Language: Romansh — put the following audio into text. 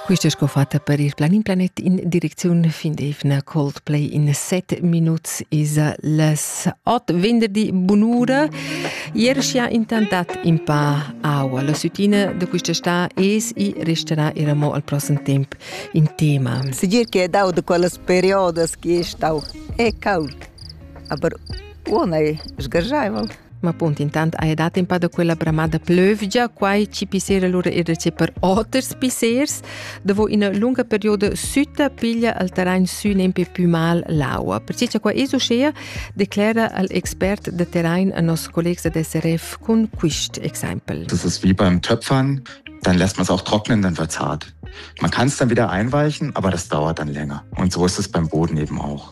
Quist es sco fatta per il Planin Planet in direcziun fin d'eivna Coldplay in 7 minuts esa las 8 venderdi bunura. Ier scha intantat in pa aua. La sütina da quista sta es i resterà era mo al prossem temp in tema. Segir che è dau da quellas periodas che stau è caud, aber una è sgargiaival. Ma appunto intant hai dat in pa da quella bramada plövgia, quai ci pissera lura il recept per oters pissers. Dopo ina lunga perioda sütta piglia al terrain sü nempe più mal l'aua. Perciò cha qua esuschea declera al expert de terrain a nos collegs ad SRF con quist exempel. Das ist wie beim Töpfern, dann lässt man es auch trocknen, dann wird's hart. Man kann es dann wieder einweichen, aber das dauert dann länger. Und so ist es beim Boden eben auch.